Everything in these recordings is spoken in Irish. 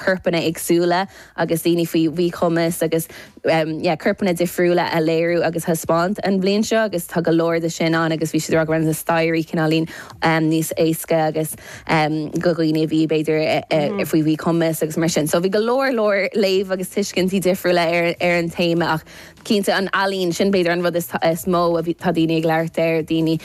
corpanna éagsúla agus daoine faoi mhíchumas agus corpanna difriúla a léiriú agus a thaispeáint an bhliain seo agus tá go leor de sin ann agus bhí siad ag rá go raibh na staighrí cineáilín níos éasca agus do dhaoine a bhí b'fhéidir faoi mhíchumas agus mar sin. So bhí go leor leor léamh agus tuiscintí difriúla ar ar an téama ach cinnte an ealaín, sin b'fhéidir an rud is mó a bhí, tá daoine ag labhairt air, daoine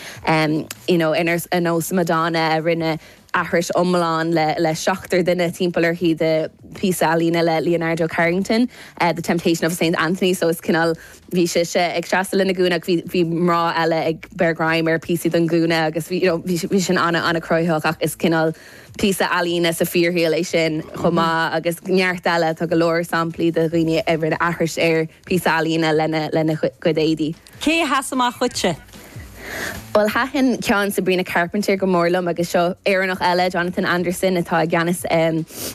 you know ar nós Madonna a rinne, aithris iomlán le seachtar duine timpeall uirthi de phíosa ealaíne le Leonora Carrington, The Temptation of Saint Anthony, so is cineál, bhí sise ag seasamh lena gúna ach bhí mná eile ag breith greim ar phíosaí den ghúna agus bhí, you know, bhí sé sin an-cruthaitheach ach is cineál píosa ealaíne sa fíorshaol é sin chomh maith agus neart eile, tá go leor samplaí de dhaoine a rinne aithris ar phíosa ealaíne lena gcuid éadaí. Cé a sheas amach dhuitse? Bhuel, thaitin ceann Sabrina Carpenter go mór liom agus seo Éireannach eile, Jonathan Anderson, atá i gceannas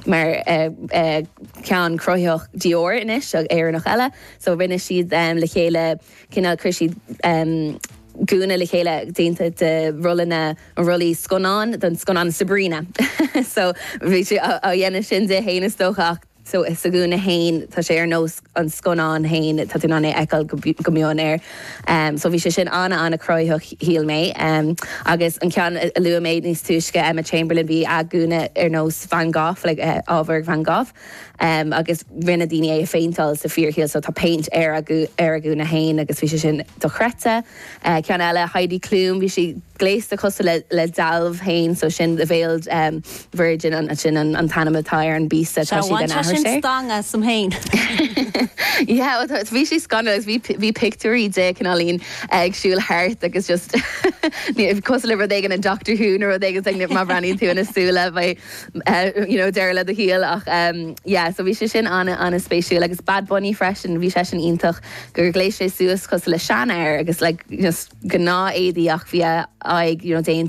mar cheann cruthaitheach Dior anois, Éireannach eile. So rinne siad le chéile cineál, chuir siad gúna le chéile déanta de rollanna, rollaí scannán don scannán Sabrina. So bhí siad á dhéanamh sin di fhéin is dócha ach. so insa ghúna féin, tá sé ar nós an scannáin féin, tá tú in ann é a fheiceáil go mion air. So bhí sé sin an-an-chruthaitheach, shíl mé. Agus an ceann a luaigh mé níos túisce, Emma Chamberlain, bhí a gúna ar nós Van Gogh, like ábhar Van Gogh. Agus rinne daoine é a phéinteáil sa bhfíorshaol, so tá péint ar a gúna féin agus bhí sé sin dochreidte. Ceann eile, Heidi Klum, bhí sí gléasta cosúil le dealbh féin, so sin the veiled virgin, sin an t-ainm atá ar an bpíosa, tá sí ag déanamh aithris air. Sea, bhain sé sin stangadh asam féin. Yeah, well, bhí sé scanrúil agus bhí pictiúirí di, cineáilín, ag siúl thart agus just cosúil le rud éigin in Doctor Who nó rud éigin, like má bhreathnaíonn tú ina súile, beidh, you know, deireadh le do shaol ach, yeah, so bhí sé sin an-an-spéisiúil agus Bad Bunny freisin, bhí seisean iontach. gur ghléas sé suas cosúil le seanfhear agus le gnáth-éadaí ach bhí a aghaidh déanta.